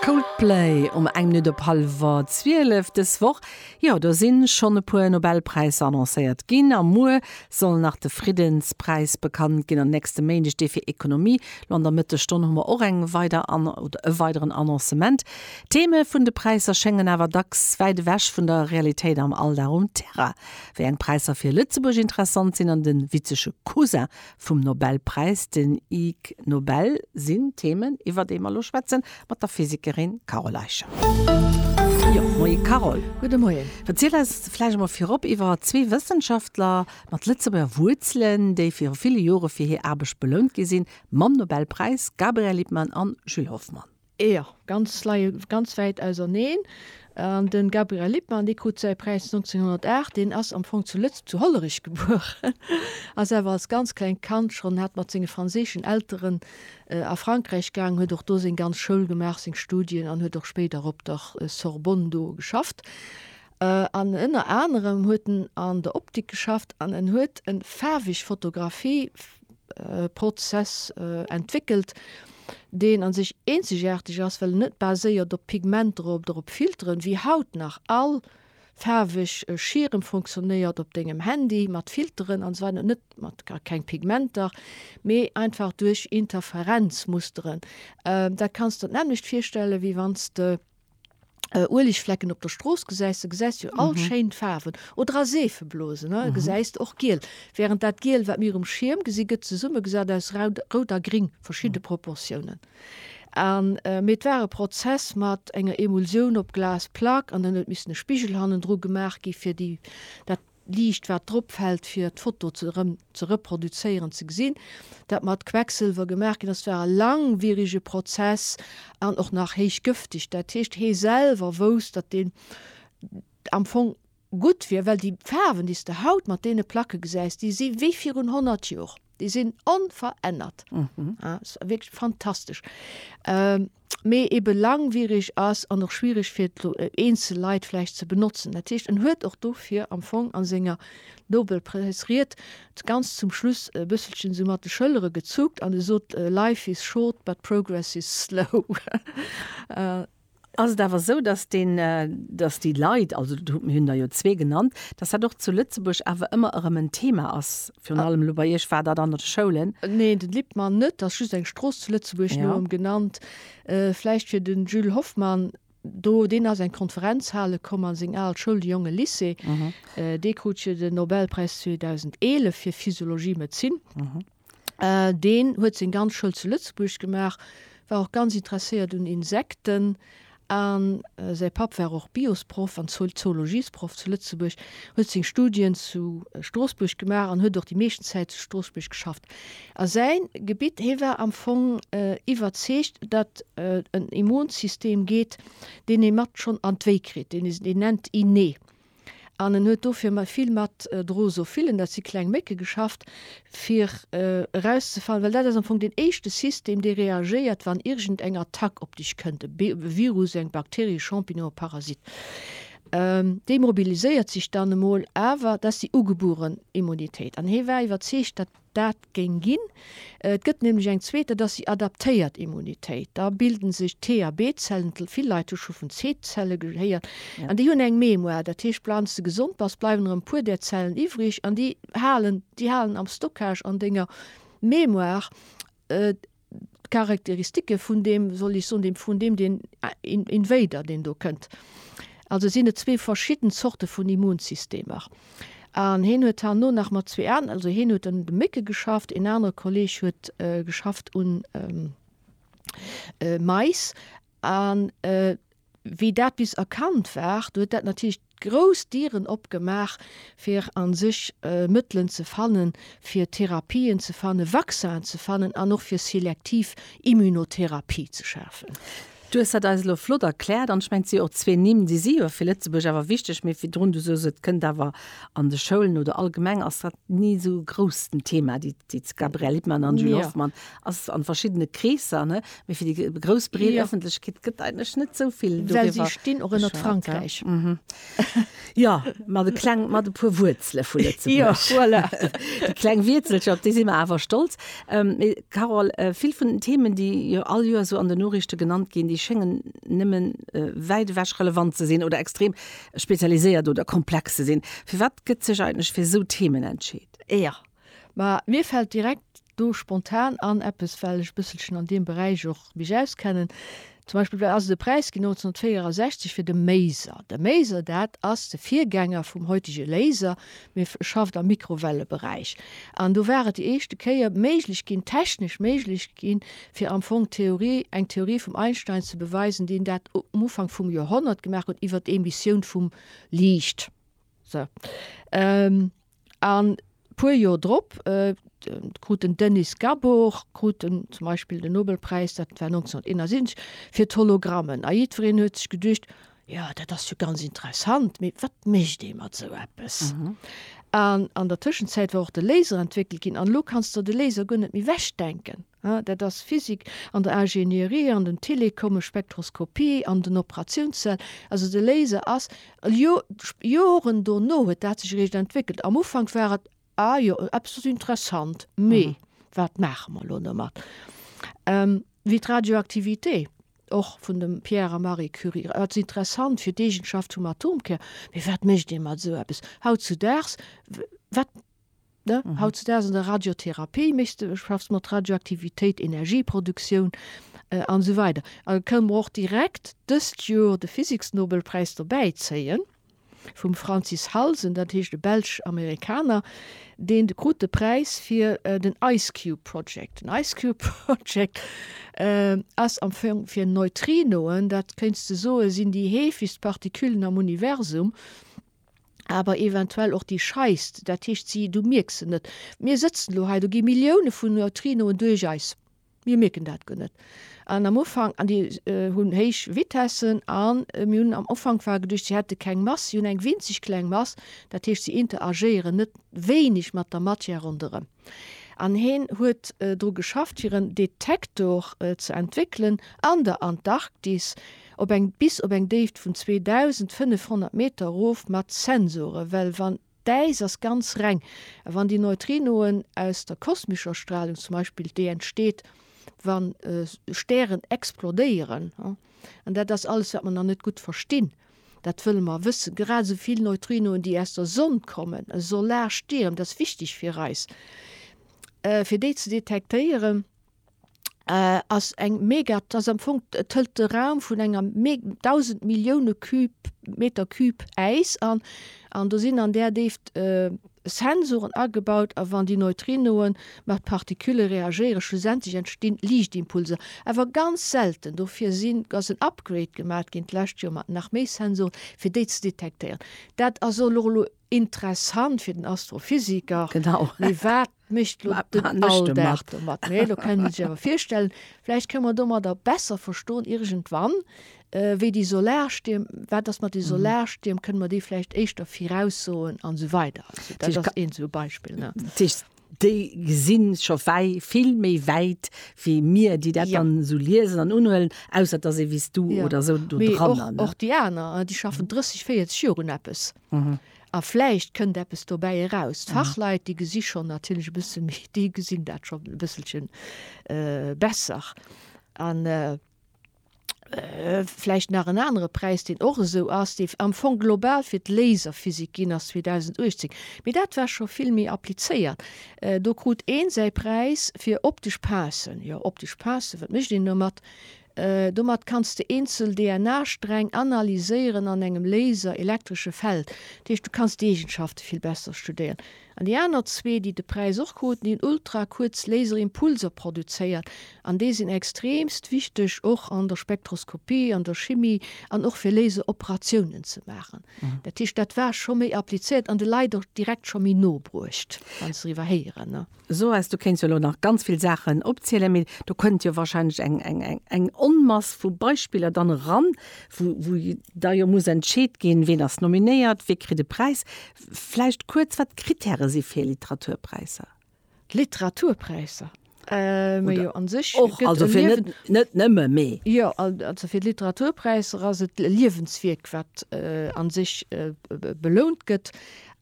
Coldplay um eng Minutt op hallwer 12 dës Woch. Jo, do si schonn e puer Nobelpräisser annoncéiert ginn a muer soll nach de Friddenspräis bekannt ginn an nächste Méindeg dee fir Ekonomie. Lo an der Mëttesstonn hu mer och eng weider an oder e weideren Annoncement. D'Theme vun de Präisser schéngen awer dacks wäit ewech vun der Realitéit am Alldag um Terrain. Wéi eng Präisser fir Lëtzebuerg interessant sinn an de witzege Cousin vum Nobelpräis, den Ig Nobel, sinn d'Theemen, iwwer déi mer elo schwätzen, mat der Physikerin Carole Eicher. Jo, Moie Carole. Gudde Moien. Verziel eis vläicht emol virop iwwer zwee Wëssenschaftler mat Lëtzebuerger Wuerzelen, déi viru ville Jore fir hir Aarbecht belount gi sinn mam Nobelpräis, Gabriel Lippmann an Jules Hoffmann. Jo, ganz leie ganz wäit auserneen. An de Gabriel Lippmann, dee krut säi Präis 1908, deen ass am Fong zu Lëtz-, zu Hollerich gebueren, ass awer als ganz klengt Kand schonn hat mat senge franséischen Elteren a Frankräich gaang, huet och do seng ganz Schoul gemaach, seng Studien, an huet och spéider op der Sorbonne do geschafft. An ënner anerem huet en an der Optik geschafft an en huet en faarweg Fotografie Prozess entwéckelt, deen a sech eenzegaarteg ass, well en net baséiert op Pigmenter oder op Filteren, wéi haut nach all faarweg Schierm funktionéiert op dengem Handy, mat Filteren an esou weider, net mat a keng Pigmenter, mee einfach duerch Interferenzmusteren. Dat kanns der d'nämmlecht virstellen, wéi wann s de. Uelegflecken op der Strooss gesäis, da gesäis du all mhm. schéin Faarwen oder a Seefeblosen ne? Mhm. gesäis och giel. Während dat Giel, wat mir um Schirm gesi gëtt zesumme gesat aus Rout a Gring verschiedene mhm. Proportionen. An äh, mit war e Prozess mat enger Emulsioun op Glas Plack an dann huet miss e Spigel hannen dru gemaach gi fir die dat Liicht wat drop fällt fir d'Foto erëm ze reproduzéieren ze gesinn. Dat mat Quecksëlwer gemaach ginn ass war e langwierige Prozess an och nach héich gëfteg. Dat heescht hie selwer wousst datt deen am Fong gutt wier, well déi Faarwen déi s de haut mat deene Placke gesäis déi si wéi virun 100 Joer. Déi sinn onverännert. Ass wierklech fantastesch. Mee ebe langwiereg ass an och schwiereg fir eenzel Leit vläicht ze benotzen. Dat heescht, en huet och dofir am Fong a senger Nobelpräisried ganz zum Schluss e bësselchen esou mat de Schëllere gezuckt an e sot, Life is short, but progress is slow. Ass et awer esou, dass deen, dass déi Leit, also do hu, mir hunn der jo zwee genannt, dass dat och zu Lëtzebuerg awer ëmmer erëm en Thema ass, virun allem elo bei Iech war dat an de Schoulen. Neen, den Lippmann net, ass just eng Strooss zu Lëtzebuerg no ëm genannt. Vläicht fir den Jules Hoffmann, do, deen ass eng Konferenzhale komm a seng al Schoul, de Jonge Lycée, dee krut jo den Nobelpräis 2011 fir Physiologie-Medezin. Deen huet seng ganz Schoul zu Lëtzebuerg gemaach, war och ganz interesséiert un Insekten. A säi Papp war och Biosproff an Zoologiesproff zu Lëtzebuerg, huet seng Studien zu Stroossbuerg gemaach an huet och déi meeschten Zäit zu Stroossbuerg geschafft. A säi Gebitt, hee war am Fong iwwerzeegt, datt en Immunsystem geet, deen ee mat schonn an d'Wéi kritt, deen ee nennt Innée. An en huet dofir mat vill mat Drosophilen, dat si kleng Mécke, geschafft, fir erauszefannen, well dat ass am Fong deen éischte System, dee reagéiert, wann iergend eng Attack op dech kënnt, e Virus, eng Bakterie, e Champignon, e Parasit. Dee mobiliséiert sech dann emol, awer dat ass déi ugebueren Immunitéit. An hie war iwwerzeegt, dat. Dat géing ginn. Et gëtt nämlech eng zweet, dat ass déi adaptéiert Immunitéit. Da bilden sech T-a-B-Zellen, vill Leit hu scho vun C-Zelle gehéiert, an déi hunn eng Mémoire. Dat heescht, wann s de gesond bass, bleiwen erëm e puer där Zellen iwwreg an déi halen am Stockage an denger Mémoire. d'Charakteristike vun deem, wéi soll ech soen, deem, vun deem, deen Invader, deen do kënnt. Also sinn et zwee verschidden Zorte vun Immunsystemer. An hien huet herno nach mat zwee aneren, also hien huet un de Mécke geschafft, een anere Kolleeg huet geschafft un Mais. An. Wéi dat bis erkannt war, huet dat natierlech grouss Dieren opgemaach, fir a sech Mëttelen ze fannen, fir Therapien ze fannen, Vaccinen ze fannen an och fir selektiv Immunotherapie ze schafen. Du hues dat eis elo flott erkläert. An ech mengen, et si jo och zwee Nimm, déi si jo fir Lëtzebuerg awer wichteg. Mee virdrun, du soos, et kënnt awer an de Schoulen oder allgemeng ass dat ni esou grouss den Thema, déi Gabrielle Lippmann an Julie Hoffmann, ass an verschiddene Kreesser, ne? Mee fir déi grouss breet ja. Ëffentlechkeet gëtt eigentlech net sou vill Well si stinn och ënnert Frankräich. Ja, mhm. ja mat de kleng mat e puer Wuerzele vu ja, voilà. De kleng Wiezelcher, op déi si mer awer stolz. Ähm, Carol, äh, vill vun den Themen, déi jo all Joer so an de Norichte genannt ginn, déi schéngen nëmmen äh, wäit ewech relevant ze sinn oder extrem spezialiséiert oder komplex ze sinn. Fir wat gëtt sech eigentlech fir sou Themen entscheet? Ja. Mä mir fällt direkt do spontan an eppes, well ech e bësselchen an deem Beräich och mech auskennen, zum Beispill wat ass et e Präis ginn 1964 fir de Maser. De Maser, dat ass de Virgänger vum heutige Laser, mee schafft am Mikrowelleberäich. An do war et déi éischte Kéier méiglech ginn, technesch méiglech ginn, fir am Fong d'Theorie, eng Theorie vum Einstein ze beweisen, deen dat um Ufank vum Joerhonnert gemaach huet iwwert d'Emissioun vum Liicht. Sou. A puer Joer drop krut den Denis Gabor krut en zum Beispill den Nobelpräis, dat war 1971, fir d'Hologrammen. A jiddwereen huet sech geduecht, Jo, dat ass jo ganz interessant, mee wat mécht ee mat esou eppes? An an der Tëschenzäit war och de Laser entwéckelt ginn an elo kanns de de Laser guer net méi wechdenken. Ah, dat ass Physik an der Ingénierie an den Telecomme, Spektroskopie an den Operationszell. Also de Laser ass jo, Joren dono huet dat sech eréischt entwéckelt. Am Ufank war et, Ah jo, eppes ass interessant, mee wat maache mer elo domat? Wéi d'Radioaktivitéé och vun dem Pierre a Marie Curie. Et ass interessant fir d'Eegenschaft vum Atomkär, mee wat mécht ee mat esou eppes? Hautzudaags, wat Ne? Mhm. Hautzudags an der Radiotherapie méchs du, schaffs mat Radioaktivitéit, Energieproduktioun äh, an so weider. A kënnen mer och direkt dëst Joer de Physiksnobelpräis dobäi zéien vum Francis Halsen, dat heescht e Belsch-Amerikaner, deen de krut de Präis fir äh, den Ice Cube Project. Den Ice Cube Project äh, ass am Fong fir Neutrinoen, dat kënns du soe sinn déi heefegst Partiküllen am Universum. awer eventuell och déi scheisst, dat heescht si, du mierks se net. Mir sëtzen elo hei, do gi Millioune vun Neutrinoen duerch eis, mir mierken dat guer net. An am Ufank, an déi hunn héich Vitessen, a mir hunn am Ufank war geduecht, si hätte keng Mass, si hunn eng winzeg kleng Mass, dat heescht si interagéieren net wéineg mat der Matière ronderëm. An heen huet dru geschafft fir en Detektor ze entwéckelen an der Antarktis op eng bis op eng Déift vun 2500 Meter erof mat Sensore well wann d'Äis ass ganz reng a wann déi Neutrinoen aus der kosmescher Stralung zum Beispill déi entsteet wa Stären explodéieren an dat ass alles wat mer nach net gutt verstinn. Dat wëlle mer wëssen. Grad esou vill Neutrinoen, déi aus der Sonn kommen, e Solarstirm, dat ass wichteg fir eis, fir déi ze detektéieren, ass eng mega, dat ass am Fong, et hëlt de Raum vun enger me, dausend Millioune Cube, Meter Cube Äis an. An do sinn an där Déift. Sensoren agebaut a wann déi Neutrinoen mat Partikülle reagéieren, schlussendlech entstinn Liichtimpulser, awer ganz selten. Dofir sinn, ass en Upgrade gemaat ginn d'lescht Joer mat nach méi Sensoren, fir déi ze detektéieren. Dat ass och elo interessant fir den Astrophysiker, mee wat mécht elo den Alldag domat? Mä elo kënnt ee sech awer virstellen, vläicht kënne mer domadder besser verstoen iergendwann, Äh, wéi déi Solarstierm, wat ass mat de mhm. Solarstierm, kënne mer déi vläicht éischter viraussoen an esou weider. Also, dat ass een so Beispiel. Ne? déi gesinn scho wei vill méi wäit wéi mir déi dat ja. dann so liesen an unhuelen ausser dat se wies du ja. oder so du dran och die aner äh, die schaffen 30 40 Joren Appes mhm. a fleicht kënnt Appes dobäi heraus mhm. Fachleit die gesicht schon natürlich e bisschen méi die gesinn dat schon e bisselchen äh, besser an äh, Vläicht nach en anere Präis, deen och esou ass, dee am Fong global fir d'Laserphysik ginn ass 2018, mee dat war scho vill méi applizéiert. Do krut ee säi Präis fir optesch Passen. Jo, optesch Passen, wat mécht een domat? Domat kanns de eenzel DNA-Sträng analyséieren an engem Laser, elektresche Feld. Dat heescht, du kanns d'Eegenschafte vill besser studéieren. An déi aner zwee, déi de Präis och kruten, déi hunn ultrakuerz Laserimpulser produzéiert an déi sinn extremst wichteg och an der Spektroskopie, an der Chimie an och fir Laseroperatiounen ze maachen. Dat heescht, dat war scho méi applizéiert an de Leit och direkt scho méi no bruecht, wa se doriwwer héieren. Soes, du kéints jo elo nach ganz vill Saachen opzielen, mee do kënnt jo warscheinlech eng Onmass vu Beispiller dann eran, wou da jo muss entscheet ginn, ween ass nominéiert, wee kritt e Präis. Vläicht kuerz, wat d'Krittäre si fir Literaturpräisser? Literaturpräisser? Mä jo, an sech gëtt e Liewen. Net nëmme, mee. Jo, also fir d'Literaturpräisser ass et e Liewenswierk, wat an sech belount gëtt.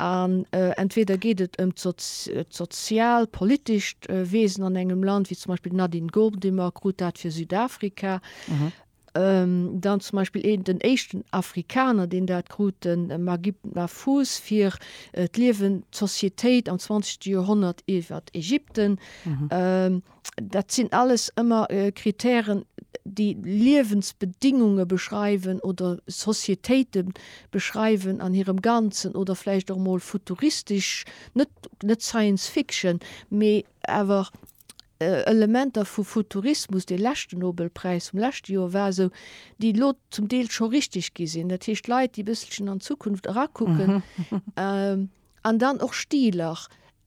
An entweder geet et ëm d'sozial, politescht Wesen an engem Land, wéi zum Beispill d'Nadine Gordimer krut dat fir Südafrika. Dann zum Beispill een, den éischten Afrikaner, deen dat krut, de Magib Mahfouz, fir d'Liewen, d'Sociétéit am zwanzegste Joerhonnert iwwer Ägypten. Dat sinn alles ëmmer Kritären, déi Liewensbedingunge beschreiwen oder Sociétéite beschreiwen an hirem Ganzen oder vläicht och emol futuristesch, net Science Fiction, mee awer Elementer vu Futurismus, dee leschten Nobelpräis vum leschte Joer war esou, déi elo zum Deel scho richteg gi sinn, dat heescht Leit, déi e bësselchen an d'Zukunft erakucken, an dann och Stiler,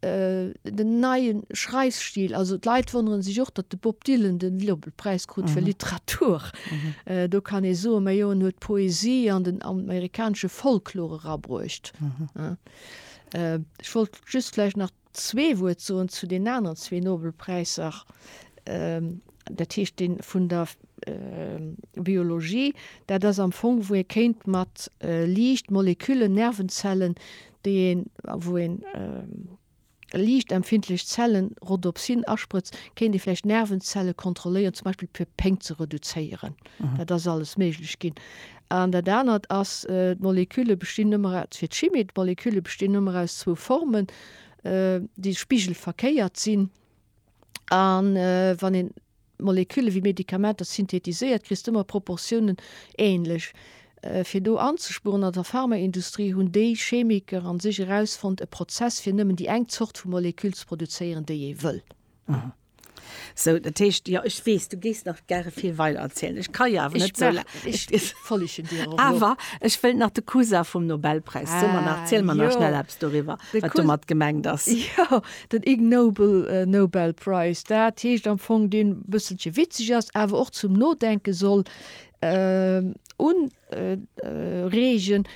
den neie Schreifstil, also d'Leit wonnere sech och, datt de Bob Dylan den Nobelpräis krut fir Literatur, do kann ee soen, majo en huet d'Poesie an den amerikanesche Folklor erabruecht. Ech wollt just vläicht nach. Zwee Wuert soen zu den aneren zwee Nobelpräisser, dat heescht dee vun der Biologie, dat ass am Fong, wou ee kéint mat Liicht Moleküllen, Nervenzellen, déi een, wou een liichtempfindlech Zellen, Rhodopsin, asprëtzt, kéint ee vläicht Nervenzelle kontrolléieren, zum Beispill fir Péng ze reduzéieren. Dat ass alles méiglech ginn. An dat anert ass, d'Molekülle bestinn nëmme, dat ass fir d'Chimie, d'Molekülle bestinn nëmme aus zwou Formen, déi spigelverkéiert sinn. A wann een Molekülle wéi Medikamenter synthetiséiert, kriss de ëmmer Proportiounen änlech. Fir do anzespueren, an der Pharmaindustrie hunn déi Chemiker a sech erausfonnt e Prozess, fir nëmmen déi eng Zort vu Moleküll ze produzéieren, déi ee wëll. Sou, dat heescht, jo, ech weess, du géifs nach gäre vill weider erzielen. Ech ka jo awer net sou laang. Ech merken, ech follegen dir och lo. Awer ech wëilt nach de Cousin vum Nobelpräis. Ah, jo. Sou mer nach, ziel mer nach schnell eppes doriwwer, wat domat gemengt ass. Jo, den Ig Nobel Nobel Prize, dat heescht am Fong, deen e bësselche witzeg ass, awer och zum Nodenke soll un. Regen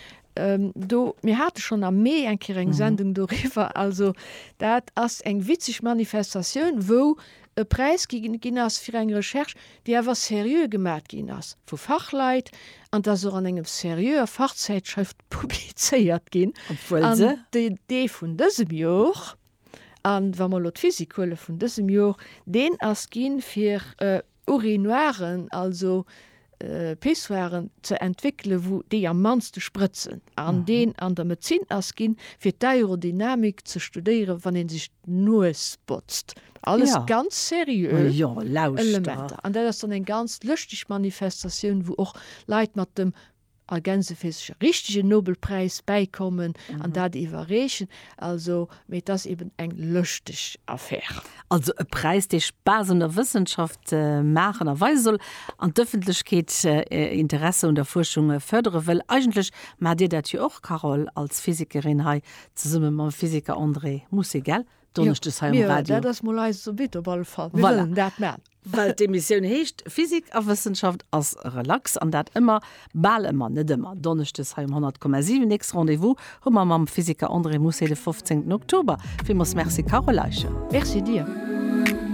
do. Mir hate schonn am Mee eng Kéier eng Sendung doriwwer. Also dat ass eng witzeg Manifestatioun, wou e Präis gi ginn ass fir eng Recherche, déi awer seriö gemat ginn ass vu Fachleit an ass och an enger seriöer Fachzäitschrëft publizéiert ginn. Dee vun dësem Jor, a wa mer elo d'Physik huelen, vun dësem Jor, deen ass gi fir, Urinoiren, also Pissoiren, ze entwéckele wou déi am mannste sprëtzen, an deen an der Medzin ass ginn, fir d'Aerodynamik ze studéieren, wann ee sech d'Nues botzt. Alles ganz seriö Elementer. An dat ass dann eng ganz lëschteg Manifestatioun, wou och Leit mat dem Ergänze fir sech e richtegen Nobelpräis bäikommen an dat iwwerreechen. Also, mee et ass eben eng lëschteg Affär. Also e Präis, dee Spaass un der Wëssenschaft maachen a weise soll an d'Ëffentlechkeet Interesse un der Fuerschung fërdere wëll. Eigentlech maacht Dir dat jo och, Carole, als Physikerin hei zesumme mam Physiker André Mousset, gell? Donneschdes hei um Radio. Dat ass mol eise Subit op alle Fall. Mir wëllen dat man. Well d'Emissioun heescht Physik a Wëssenschaft ass relax an dat ëmmer, bal ëmmer, net ëmmer, Donneschdes hei um 100,7. Nächst Rendez-vous hu mer mam Physiker André Mousset de 15. Oktober. Villmools Merci Carole Eicher. Merci dir.